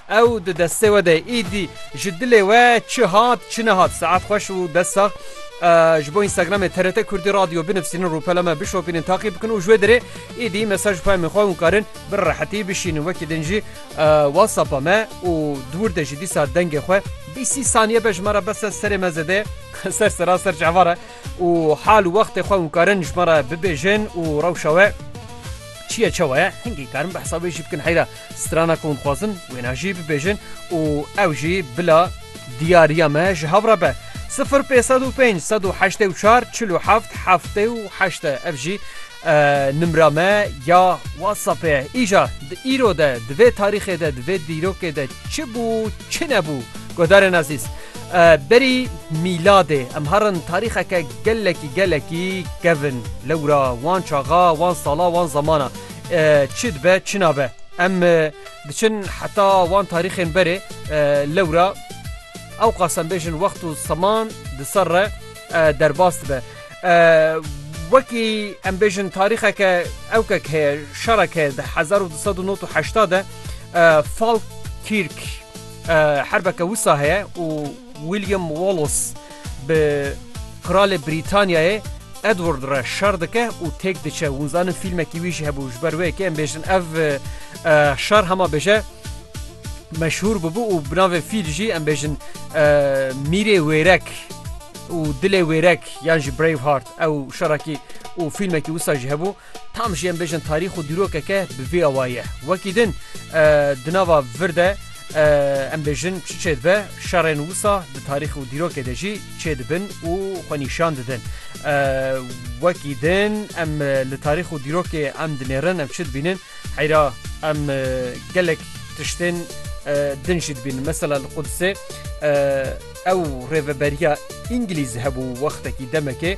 Ew di destê we de ye. Îdî ji dilê we çi hat çi nehat. Saet xweş û dest sax. Ji bo Instagramê TRT Kurdî Radio binivîsînin, rûpela me bişopînin, taqî bikin û ji wê dirê îdî mesaj peyamên xwe hûn karin bi rehetî bişînin. Wekî din jî WhatsAppa me û di wir de jî dîsa dengê xwe bîst sî saniye be ji me re bes e serê me zêde ser sera ser çavan re û hal û wextê xwe hûn karin ji me re bibêjin û rewşa we çiye çawa ye hingî karin behsa wê jî bikin heyra. Strana ku hûn dixwazin wêna jî bibêjin û ew jî bila. Diyariya me ji hev re be. Sifir pê sed û pênc sed û heştê û çar çil û heft heftê û heşt e. Ev jî nimra me ya WhatsAppê ye. Îja di îro de, di vê tarîxê de, di vê dîrokê de çi bû, çi nebû? Guhdarên ezîz, berî mîladê em herin tarîxeke gelekî gelekî kevn. Lewra wan çaxa, wan sala, wan zemana. Çi dibe çi nabe em diçin heta wan tarîxên berê lewra ew qasem bêjin wext û seman di ser re derbas dibe. Wekî em bêjin tarîxeke ewkek heye şerek heye di 1998 de Falkirk herbeke wisa heye û William Wallace Bi Qralê Brîtanyayê Edward re şer dike û têk diçe. Hûn zanin fîlmekî wî jî hebû ji ber wê yekê em bêjin ev şer hema bêje meşhûr bûbû û bi navê fîl jî em bêjin mîrê wêrek û dilê wêrek yan jî Braveheart ew şerakî û fîlmekî wisa jî hebû. Tam jî em bêjin tarîx û dîrokeke bi vî awayî ye. Wekî din di nava vir de em bêjin çi çêdibe, şerên wisa di tarîx û dîrokê de jî çêdibin û xwe nîşan didin. Wekî din em li tarîx û dîrokê em dinêrin em çi dibînin? Heyra em gelek tiştên din jî dibînin. Mesela li Qudisê ew rêveberiya Îngilîz hebû wextekî demekê.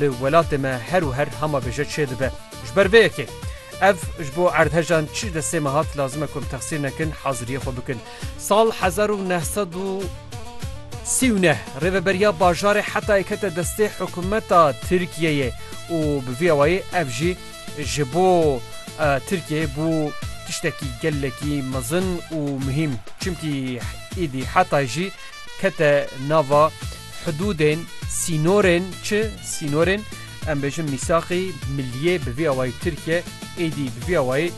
Li welatê me her û her hama bêje çê dibe. Ji ber vê yekê ev ji bo erdhejan çi destê me hat lazim e ku em texsîr nekin haziriyê xwe bikin. Sal hezar û neh sed û sî û neh rêveberiya bajarê Hetayê kete destê hikûmeta Tirkiyeyê û bi vî awayî ev jî ji bo Tirkiyeyê bû tiştekî gelekî mezin û muhîm. Çimkî îdî Hetay jî kete nava. Hudûdên, sînorên çi? Sînorên em bêjin mîsaqî milliyê bi vî awayî Tirkiye êdî bi vî awayî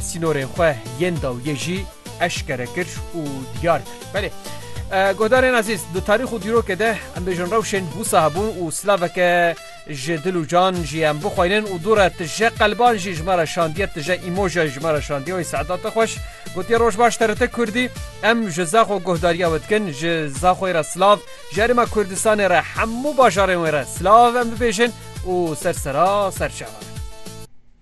sînorên xwe yên dawiyê jî eşkere kir û diyar kir. Belê guhdarên ezîz di tarîx û dîrokê de em bêjin rewşên wisa hebûn û silaveke Ji dil û can jî em bixwînin û dûre tije qelban jî ji me re şandiye tije îmoja jî ji me re şandiye wê Sedat te xweş gotiye roj baş te rite kurdî em ji Zaxo guhdariya we dikin ji Zaxoyê re silav ji herêma Kurdistanê re hemû bajarên wê re silav em bibêjin û ser sera serçe